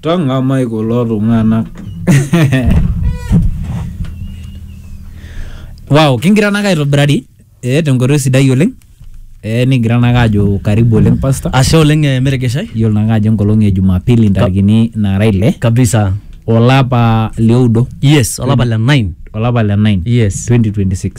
tang'amai kulo tung'anak wow kingira nake aitobirari eh, tenkoitoi sidai oleng eh, nikigira nake ajo karibu oleng pasta ashe oleng eh, meregeshai yiolo nake ajo enkolong e jumapili ntarikini nara ile kabisa olapa lioudo yes olapa le 9 olapa le 9 yes 2026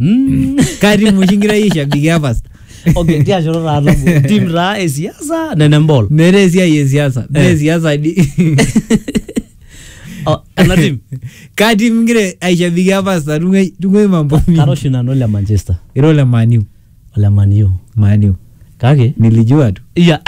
Mm. karimu oshi ngira yie shabiki e pasta okay tia shoto taa nabo tim taa esiasa nene mbol meeta esiai e siasa Eh. mee siasa di Oh, ena tim katim ngira aishabiki e pasta tung'uai mambo kara oshi nanu le manchester iro le maniu ole Man U. Manu. Kake Nilijua tu. iya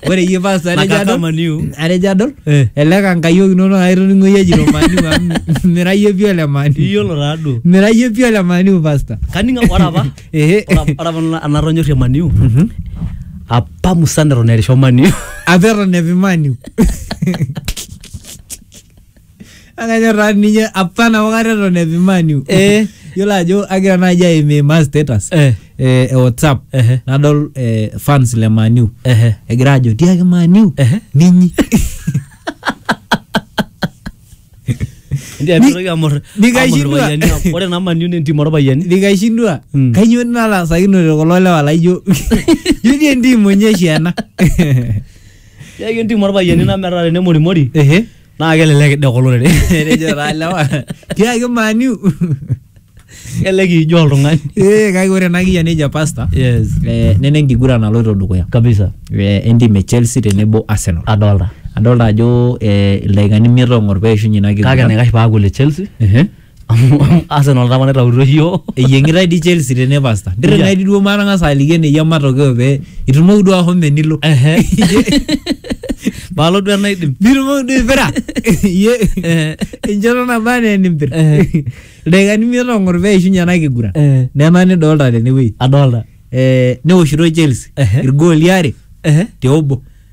Ore iyie paa sare Nakaka jadol. Man U. Are jadol. Eh. Ele kankayiok inono aitoning'o iyie jito Manu amu mira iyie pii ole Manu. iyiolo taaduo Mira iyie pii ole Manu pasta. kaning ore apa Ehe. ore apa- ore apa na- anatonyorrie maniu apa musan eton erisho maniu Apa eton epi Manu. akanyor taa ninye apa nabo kata eton epi Man U. Eh. yiolo ajo agira naaji aimimaa status Eh. eh, e whatsapp Ehe. nadol eh, fans le Man U Ehe. egira ajo tiaki Man U Ehe. ninyi Ndio Ni- mitoki amor. amor nikaishindwa. irpayiani amu Ore naa maniu entim orpayiani. nikaishindwa Mm. kainyoo natasakinote kulo lewa laijo jodi entim onyeshi ena Yake entim orpayiani nametaa tenemorimori. Ehe. naa kelelek ide kulo rere etejo taa lewa tiaki maniu kelelek ijo oltung'ani ee kake ore ena kiyian nejo pasta yes eh, nena enkiguran naloito dukuya kabisa eh, entim e chelsea tenebo arsenal adolta adolta ajo eh, ildaikani imiet ong'or peishunye ina kake kiguran enaikash paaku le chelsea Ehe. Amu Arsenal tapa naitautuo yioo. eyieng'itae di Chelsea tene pasta ndire Yeah. naidi duo matang'asa aliki eneyia matokeo pee itumoki duo ahomo enilo Ehe. Palo duo enaidim. nitumoki duo aipira iye Eh. enchoto naba anaa enimpir Eh. ildaikani imiet ong'or pee eishunye ena kiguran Eh. nena nidolta tenewueji Adolta. eh, newoshitoi Chelsea Ehe. irgooli are Ehe. te obo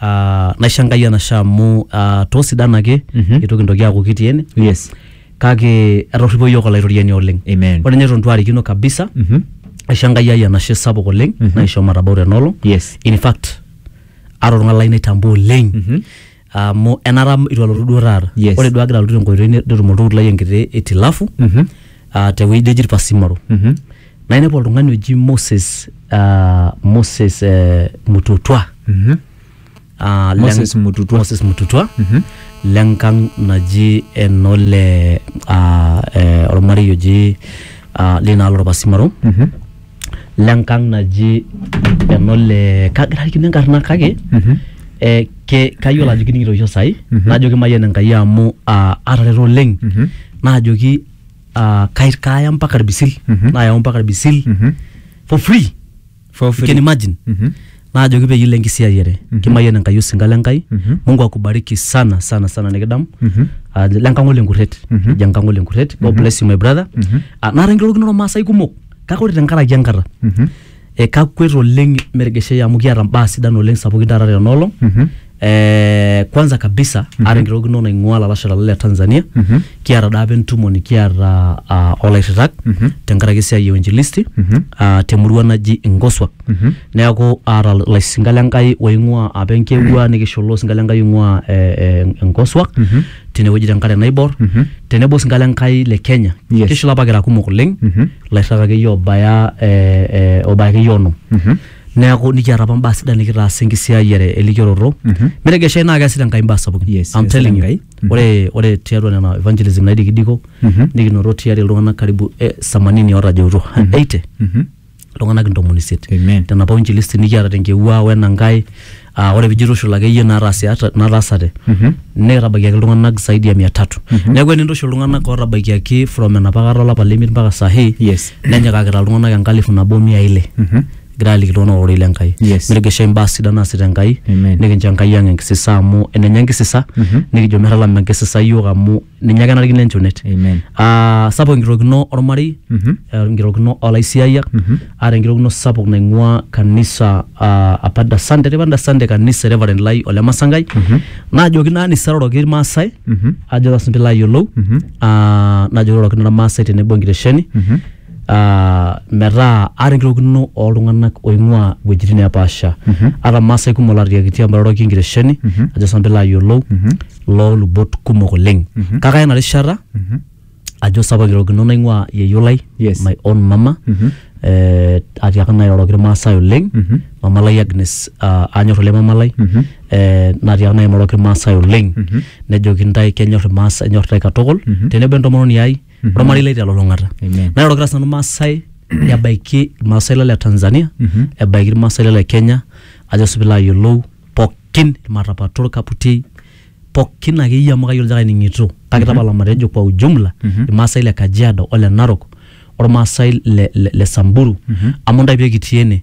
Ah, naisho enkai enashe amu ah, toosidan ake Mhm. eitu kintoki aaku kitii ene yes kake etorripo iyiook olaitoriani oleng Amen. ore ninye eton itu aarikino kabisa Mhm. aisho enkai ai enashe sapuk oleng Mhm. naisho matabau tenolong yes in fact ara oltung'ani lai naitambua oleng Mhm. amu enara itu alotu duo taata Yes. ore duo agira alotu tenkoitoi netum oltukutuk lai enkiti itilafu Mhm. ah, tewueji neji irpasimaro Mhm. nainepu oltung'ani oji Moses ah, Moses eh, Mututwa Mhm. Ah, leng- Moses Mututwa. Moses Mututwa lenkang naji enole ah, eh, ormarei oji ah, linaalo orpasimaro Mhm. lenkang naji enole kagira arikino enkarna kake Mhm. eh, ke- kayiolo ajo kining'ito oshi osai Mhm. najoki mayian enkai amu ah, atareto oleng Mhm. naajoki ah, kai- kaya mpaka irbisil Mhm. nayau mpaka irbisil Mhm. for free For you can free. imagine Mhm. naajoki peyie ilo enkisiayiare Mhm. kimayian enkai osinka le nkai Mhm. mungu akubariki sana sana sana nikidamu Mhm. Ah, le nkang'ole enkurret Mhm. ejo enkang'ole enkurret god bless you my brother Mhm. Ah, naata enkirorokinoto maasai kumok kake ore tenkaraki enkata Mhm. E, kakwet oleng mergeshei amu kiata mbaa sidan oleng sapukin taata tena olong Mhm. Eh, kwanza kabisa aata enkirorokino naing'ua lalashera le Tanzania Mhm. kiata daa apa entumo nikiata ah, olairritak Mhm. tenkaraki esiai e uinjilisti Mhm. ah, temurua naji Ingoswa Mhm. neeku aata laisinka le Nkai oing'ua apa enkewua nikishola osinka le Nkai oing'ua eh, eh, Ingoswa Mhm. tenewueji tenkare naibor Mhm. tenebo sinkalo enkai le kenya Yes. kishula apa kira kumok oleng Mhm. lairrag akeyie obaya eh, eh, obaya akeyie onom Mhm. neeku nikiata apa mbaa sidan nikitaasa enkisiayiare elikioroto Mhm. metegeshai naa keasita enkai mbaa sapukin Yes, I'm yes, telling you. Enkai. Mhm. ore ore tiatua nena evangelism naidikidiko Mhm. nikinoto tiari iltung'anak karibu eh, samanini otajeutuo 80 Mhm. iltung'anak intomoni isiet Amen. tenapa uinjilisti nikiata tenkewua wenankae aa ore pijo itushul akeyie naataasiata- nataasate nikitabaikiaki iltung'anak zaidi ya mia tatu neeku enintushul iltung'anak ootabaikiaki from enapa kata olapa lemiet mpaka sahi Yes. nenyikakita iltung'anak enkalifu nabo mia ile Mhm. egira aliki iltung'anak ororei le Nkai Yes. nitigishai imbaa sidan naasita Enkai Amen. nikincho Enkai ang enkisisa amu enenye enkisisa nikijo metalama enkisisa yiok amu ninye ake enarikino enchunet Amen. Ah, sapuk enkitokino ormarei Mhm. eh, enkitokino olaisiayiak aata enkitokino sapuk naing'ua kanisa ah, apa dasande tipa dasande kanisa reverend lai ole masangai najoki naa nisaroroki irmaasai Mhm. ajo tasinche layiolou Mhm. ah, najoki rorokino irmaasai tenebo enkitesheni Mhm. metaa aarikirokino oltung'anak oing'ua iwuejitin neepaasha ata irmaasai kumok laatiakitia amu airoroki enkiresheni ajo sinanu piilo ayiolou loolubot kumok oleng kake aya ina rishata ajo sapa kirorokino naing'ua yieyio lai Yes. my own mama eh, atiaka nanu airoroki irmaasai oleng mama lai Agnes ah, anyor oleng mama lai eh, natiaka nanu airoroki irmaasai oleng nejoki intae kenyor irmaasai enyor intae katukul tenebo entomononi ai Mhm. ormarei lai telulung'ata Amen. nairorokita sinanu maasai ebaiki irmaasai lo le tanzania Mhm. ebaiki irmaasai lo le kenya ajo sipilo ayiolou pookin irmatapato orkaputiei pookin akeyie amu kayiolo ajo kaining'ito kake tapala matejo kwa ujumla Mhm. irmaasai le kajiado ole narok ormaasai le, le, le samburu Mhm. amu ntae pekitii ene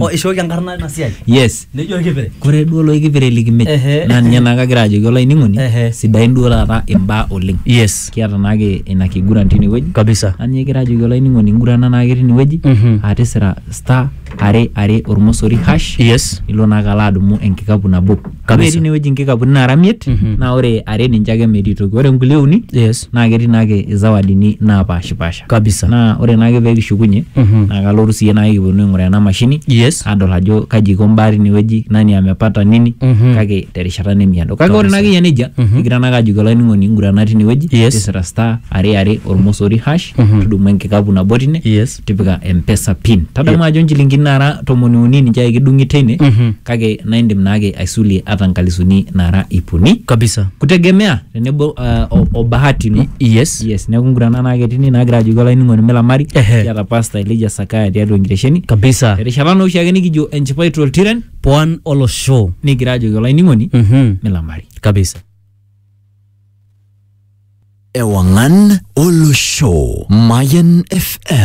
o ishooki enkarna ina siai yes nejo olkipire kore duo loikipire likimej Ehe. naa ninye naa kagira ajoki olainining'oni Ehe. sidain duo taata imbaa oleng yes kiata naake ina kiguran tinewueji kabisa naa ninye kigira ajoki olainining'oni ngurana naake tinewueji Mhm. aa tisira star are are ormosori hash yes ilo naake alo adumu enkikapu nabo Kabisa. ore tinewueji inkikapuni naara miet Mhm. naa ore are ninche ake metii toki ore nkulie uni yes naa ketii naake izawadini naapashipasha Kabisa. Naa ore naake pee kishukunye Mhm. naa kalotu siyie naake kiponu aing'uraa ena mashini Yes. adol ajo kaji iko mbaa tinewueji, nani amepata nini Mhm. kake terishata nemiado. Kake ore Kabisa. naake eyia nejia Mhm. kigira naake ajoki olainining'oni ngurana tinewueji Yes. tisira star are are ormosori hash Mhm. tudumu enkikapu nabo tine Yes. tipika mpesa pin. Tadamu ajo nchilingini naara tomoni uni ninche ake kidung'i teine Mhm. kake naa indim naake aisulie ata nkalisuni naara iip uni Kabisa. kutegemea tenebo ah, o- o bahati no yes yes neeku nguran ena naake tini naagira ajoki olainining'oni milamari Ehe. kiata pasta elija sakaya tiatua enkitesheni kabisa erishata naa oshiake nikijo enchipai toltiren pwan olosho nikigira ajoki olainining'oni Mhm. milamari kabisa Ewangan Olosho Mayan FM